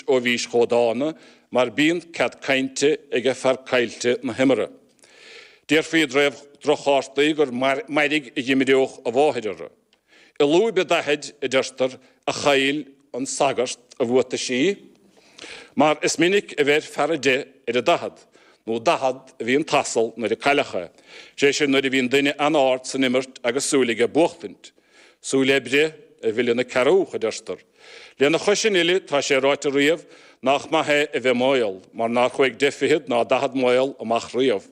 Ó bhís chomh dána mar bíonn cead cainte ag fear caillte na himeartha. Déarfaí i dtaobh droch-chártaí gur mairg a dh'imreodh a mháthair orthu. I lúib a daichid, a deirtear, a chaill an sagart a bhuataisí, mar is minic a bheir fear a deich ar a daichead, nó daichead a bhí an t-asal nuair a cailleadh é, sé sin nuair a bhíonn duine an-ard san imirt agus súil aige buachtaint. Súil le breith a mhilleann an cearrbhach, a deirtear. Lena chois sin uile, tá sé ráite riamh nach maith é a bheith maol, mar nár chuaigh deich fichead ná daichead maol amach riamh.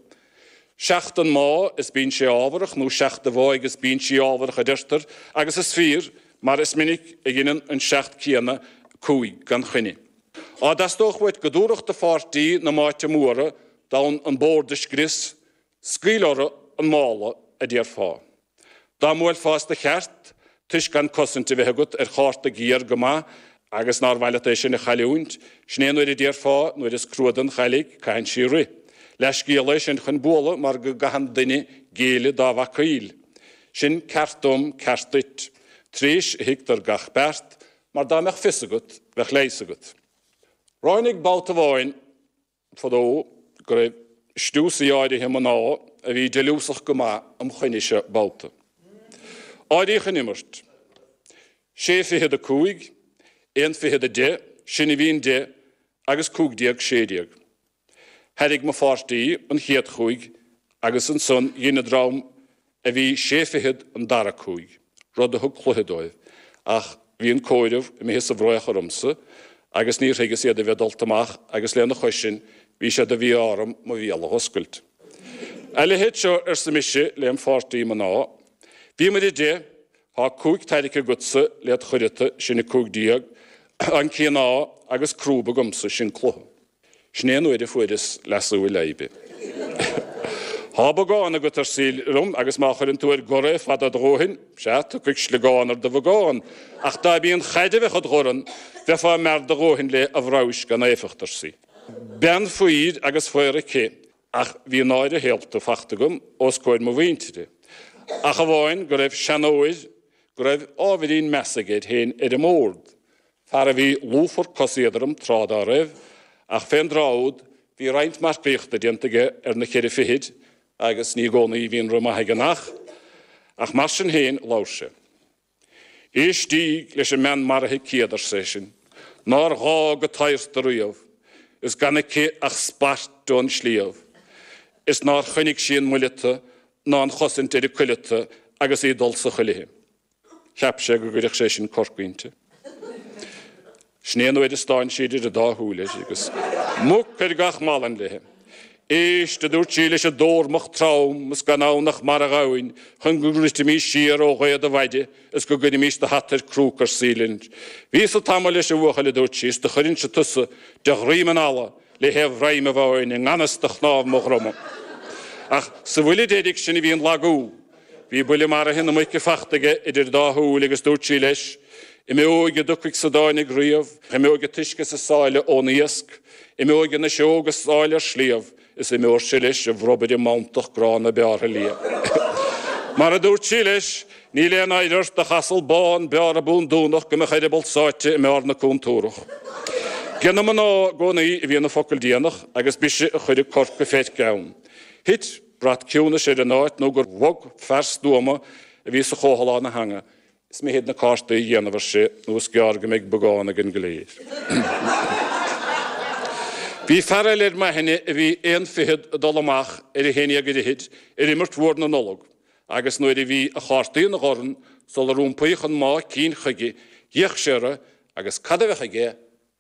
Seacht an má is bíonn sé ámharach, nó seacht an mháigh is bíonn sé ámharach, a deirtear, agus is fíor, mar is minic a dheineann an seacht céanna cúig gan choinne. Dhá dteastódh uait go dtabharfadh do pháirtí na máite móra d'fhonn an bord a scrios, Scaoil orthu an mála, a déarfá. Dá mbuailfeá as do cheart, toisc gan cosaint a bheith agat ar chárta géar go maith agus nár mhaith leat é sin a chailliúint, sin é an uair a déarfá, nuair is crua don chailligh, caitheann sí rith. Leathscéal é sin chun bualadh mar go gcaitheann duine géilleadh dá bhacaíl sin. Ceart dom, ceart duit. Tréis a thuigtear gach beart, mar dá mbeadh fios agat, bheadh leigheas agat. Ráinig babhta amháin. fadó go raibh stiúsaí áirithe mná a bhí deiliúsach go maith im choinnese babhta. Áiríodh an imirt. Sé fichead a cúig, aon fichead a deich, sin a bhíonn deich, agus cúig déag, sé déag. Thairrig mo pháirtí an chéad chúig agus ansan dhein an dream a bhí sé fichead an dara cúig, rud a thug cluiche dóibh, ach bhí an comhaireamh imithe sa bhfraoch ormsa agus níor thuigeas iad a bheith dulta amach agus lena chois sin bhí sé de mhí-ádh orm mo bhéal a dh'oscailt. A leithéid seo, arsa mise lem' pháirtí mná, bhíomair a deich, thá cúig tairrice agatsa led' chuireata, sin 15, an cíoná, agus crúb agamsa, sin cluiche. Sin é an uair a fuaireas leasú i leidhbe. Thá bogán agat, ar sí liom, agus má chuireann tú ar gor é fada do dhóthain, sea, tiocfaidh sliogán ar do bhogán, ach dá mb'í an chaid a bheadh id dhorn, bheifeá mear do dhóthain léi, a bhraghais gan éifeacht, ar sí. Bean faobhair agus faobhar aici, ach bhí náire shaolta fachta agam os comhair mo mhuintire, ach amháin go raibh seanóir go raibh ábhairín measa aige air féin ar an mbord, Fear a bhí lúfar coséadrom tráth dá raibh, ach fén dtráth úd bhí roinnt marcaíochta déanta aige ar na ceithre fichid agus ní i gcónaí a bhíonn an rith maith ag an each, ach mar sin féin labhair sé. Éistíg leis an mbean maraithe céad, arsa seisean, nár fhág an tairseach riamh, is gan aici ach spairt ón sliabh, is nár choinnigh sí an muileata ná an chosaint ar a cuileata agus í ag dul sa chuilithe. Cheap sé go gcuirfeadh sé sin corc inti. Sin é an uair a stán sí idir an dá shúil air, agus muc ar gach malainn léi. Éist, a dúirt sí leis an dtórmach trom, is gan ann ach marbhghamhain chun go ndruidfimís siar ó ghaoth do mhaide is go gcuirfimís do hata ar crúca ar saoi linn. Bhíos-sa tamall leis, a bhuachaill, a dúirt sí, is do chuirfinnse tusa de dhroim an fhalla le haon bhroim amháin i ngan fhios do chnámh mo dhroma. Ach sa bhuille deiridh sin a bhí an lagú. Bhí buille maraithe na muice fachta aige idir dá shúil agus dúirt sí leis, Imeoidh a dtiocfaidh is a dtáinig riamh, imeoidh an t-uisce is an sáile ón iasc, imeoidh an fhuiseog is áille ar sliabh, is imeoirse leis a bhrobaire mantach gránna bearrtha liath. Mar a dúirt sí leis, Níl aon oidhre ort, ach asal bán bearrtha búndúnach, go mbeadh a eireaball sáite i mbarr na cúntúrach. Ag na mná i gcónaí a bhí an focal déanach agus b'ise a chuireadh corc a feirce ann. Thit. Brat ciúnais ar an áit nó gur bhog fear stuama a bhí sa chomhthalán a theanga. Is mithid na cártaí a dhéanamh, ar sé, nó is gearr go mbeidh bogán ag an gcléir. Bhí fear eile ar m'aithne a bhí aon fichead ag dul amach ar a haon déag ar fhichid ar imirt mhór na Nollag, agus nuair a bhí a chártaí ina dhorn sular iompaíodh an mámh cinn chuige, d'fhéach sé orthu, agus cad a bheadh aige?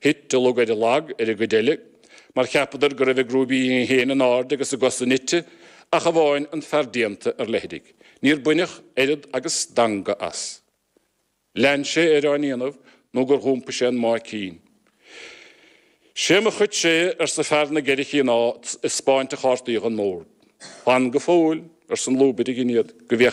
Thit a lug ar a lag ar an gcuid eile, mar cheapadar go raibh a gcrúbaí féin in airde agus a gcosa nite, ach amháin an fear déanta ar leithrigh. Níor baineadh oiread agus stangadh as. Lean sé air á ndéanamh nó gur dh'iompaigh sé an mámh cinn. Sé mo chuid sé, arsa fear na gceithre chíoná ag 'speáint a chártaí don mbord. Fan go fóill, arsa an lúbaire, gin iad, go